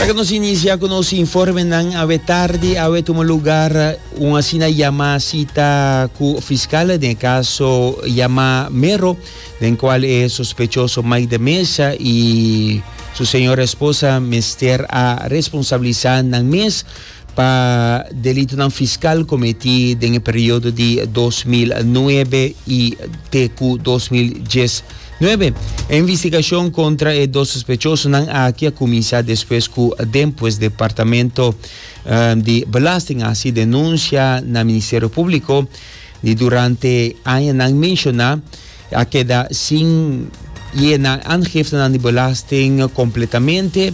Ta que nos inicia con nos informe nan awe tarde awe tuma lugar un asina llama cita cu fiscal den caso llama Mero den cual e sospechoso Mike de Mesa y su señora esposa mester a responsabilizar nan mes Pa delitonan fiskal kometí den e periodo di dos mil nuebe i te ku dos mil dies nuebe. E investigashon kontra e dos sospechosonan aki a kuminsá despues ku denpues Departamento di Belasting a hasi denunsia na Ministerio Públiko di durante añanan menshoná a keda sin ye nan aangiftenan di belasting kompletamente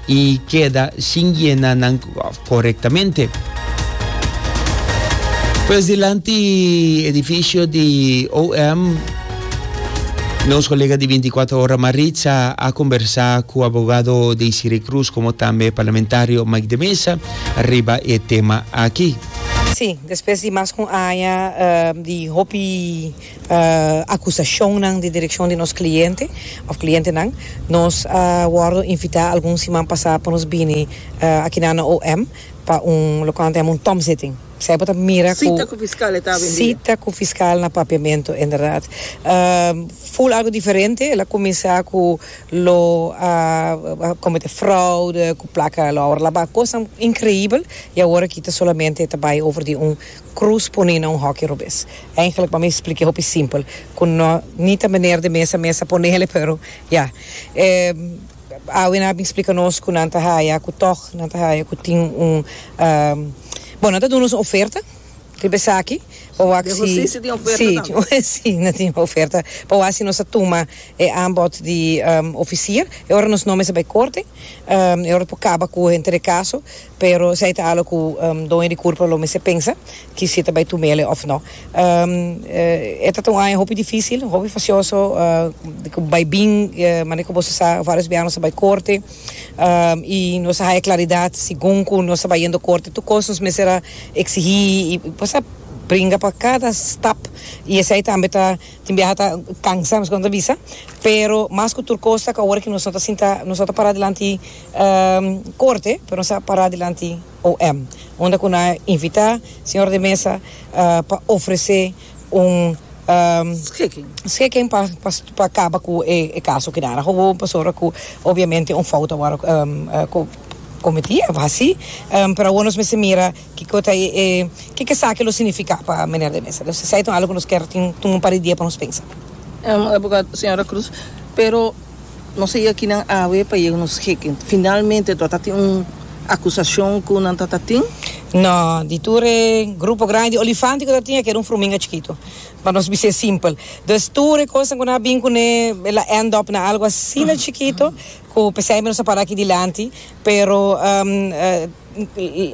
i keda sin yena nan korektamente. Pues dilanti edifisio di OM, nos kolega di bintikwatro ora Maritza a kombersá ku abogado Deisire Cruz komo tambe parlamentario Mike de Meza riba e tema aki. Sí, despues di mas ku un aña di hopi acusacionnan di direccion di nos cliente of clientenan. Nos a wordo invita algun siman pasa pa nos bini akina na OM pa un loke nan tenha un tom zitting. Esai bo ta mira cu. Cita cu fiscal e ta avendia. Cita cu fiscal na Papiamento, inderdaad. Full algo diferente. El a cuminsa cu lo a comete fraude cu placa lo a wordo laba. Cosnan increibel y awor aki ta solamente ta bay over di un Cruz pone na un hoki robes. Eigenlik pa mi spliké hopi simpel ku no ni ta meneer de mesa mesa ponele pero ya. E awena a bin splika nos ku nan ta haya ku tog nan ta haya ku tin un bon nan ta duna nos un oferta riba esaki pa wak si si tin oferta si nan tin oferta pa wak si nos ta tuma e aanbod di ofisier e ora nos nomber sa bai korte e ora por kaba ku henter de kaso. Pero esei ta algo cu doño di curpa lo mester pensa ki si ta bay tumele of no. E ta ta un aña hopi dificil, hopi facioso, cu bay bin, manera cu boso sa, varios biaha nos a bay corte y nos a haya claridad segun cu nos ta bay yendo corte tur cos nos mester a exigi y nos a bringa pa cada stap y esei tambe ta, tin biaha ta cansa, nos a bisa, pero mas cu tur cos ta cu awor nos no ta sinta, nos no ta para dilanti. Corte, pero nos a para dilanti OM, unda cu nos a invita Señor de Mesa pa ofrece un schikking pa caba cu e caso kidara gewoon pasobra cu obviamente un fout a word cometi, a haci, pero awor nos mester mira kico ta e, kico esaki lo significa pa Meneer de Mesa. Esaki ta un algo cu nos kier tin un par di dia pa nos pensa. Abogado, Señora Cruz, pero. Nos a yakinan awe pa yega nos heken. Finalmente to ta tin un acusacion cu nan ta ta tin? No, di tur e grupo grandi di olifante cu ta tin a keda un fruminga chikito. Pa nos bis'e simpel. Dus tur e cosnan cu nan a bin cune e la end up na algo asina chikito cu peseyber nos a para aki dilanti. Pero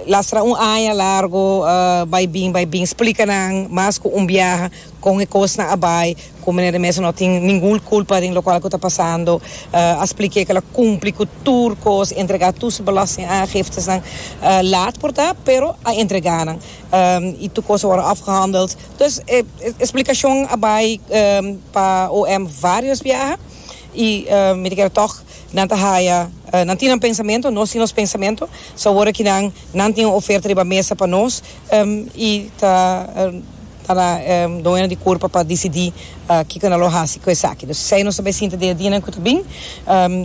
lastra un aña largo bai bin bai bin splica nan mas cu un biaha. Kon e kosnan a bai ku Meneer de Meza no tin ningun kulpa den lokual ku ta pasando. A splik'é ku el a kumpli ku tur kos, entregá tur su belastingaangiftenan laat por ta, pero a entregá nan. I tur kos a wòrdu afgehandeld. Dus e splikashon a bai pa OM vários biaha i mi ta kere tòg nan ta haya, nan tin nan pensamentu, nos tin nos pensamentu. So awor aki nan, nan tin un oferta riba mesa pa nos i ta. ta na doño di kurpa pa disidí kiko nan lo hasi ku esaki. Dus esei nos ta bay sinta dia dianan ku ta bin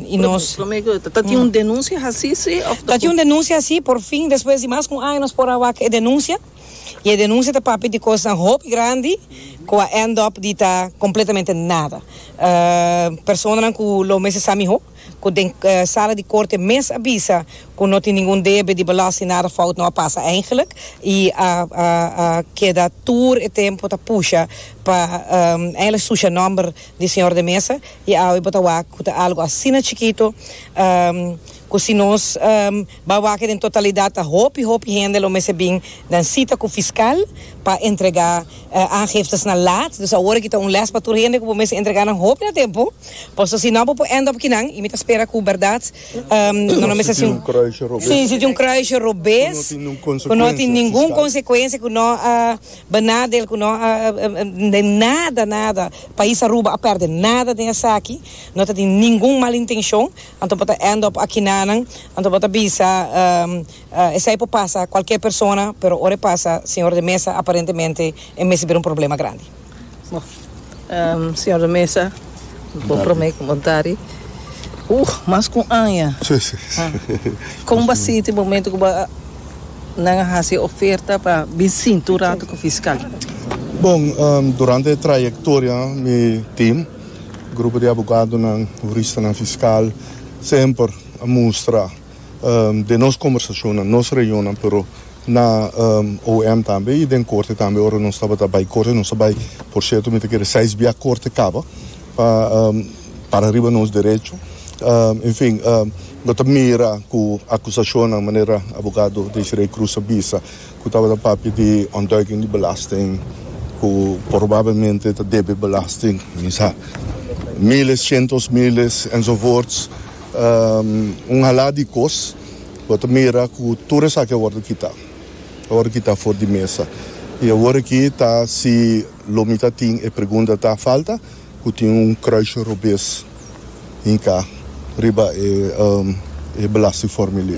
i nos. Lo mei ku ta tin un denunsia hasi si òf. Ta tin un denunsia hasi, por fin despues di mas ku un aña nos por a wak e denunsia i e denunsia ta papia di kosnan hopi grandi ku a end up di ta kompletamente nada. Personanan ku lo mester sa mihó cu den sala di corte mes a bisa cu no tin ningun debe di belasting, nada fout no a pasa eigenlijk y a a keda tur e tempo ta pusha pa eigenlijk sucia nomber di señor de Meza y awe bo ta wak cu ta algo asina chikito cu si nos. Ba wak den totalidat a hopi hopi hende lo mester bin den sita ku fiskal pa entrega aangiftenan laat. Dus awor aki ta un lès pa tur hende ku bo mester entrega nan hopi na tempu, paso si no bo por end up kinan i mi ta spera ku bèrdat no lo mester hasi un si tin un kruisje robes ku no tin ningun konsekuensia ku no a benadel ku no a den nada nada pais Aruba a pèrdè nada den esaki no ta tin ningun malintenshon. Anto bo ta end up aki nanan, anto bo ta bisa esai por pasa cualkier persona, pero ora e pasa señor de mesa aparentemente e mester bira un problema grandi. Bo señor de mesa bo prome cu bo dari uh mas cu un aña ha con bo a sinti momento cu bo nan a haci e oferta pa bin sinti un rato cu fiscal? Bon, durante e trayectoria mi team. Grupo di abogadonan, huristanan, fiskal semper a mustra den nos kombersashonnan, nos reunionnan, pero na OM tambe i den korte tambe ora nos tabata bai korte, nos a bai porsierto mi ta kere seis bia korte kaba pa para riba nos derecho. Enfin, lo ta mira ku akusashonnan manera abogado Desiree Cruz a bisa. ku tabata papia di ontduiking di belasting ku probablemente ta debe belasting, misa miles, shentos miles, enzovoorts, un halá di kos bo ta mira ku tur esaki a wòrdu kitá, a wòrdu kitá for di mesa. I awor aki ta si lo mi ta tin e pregunta ta falta ku tin un kruisje robes hinká riba e belastingformulier.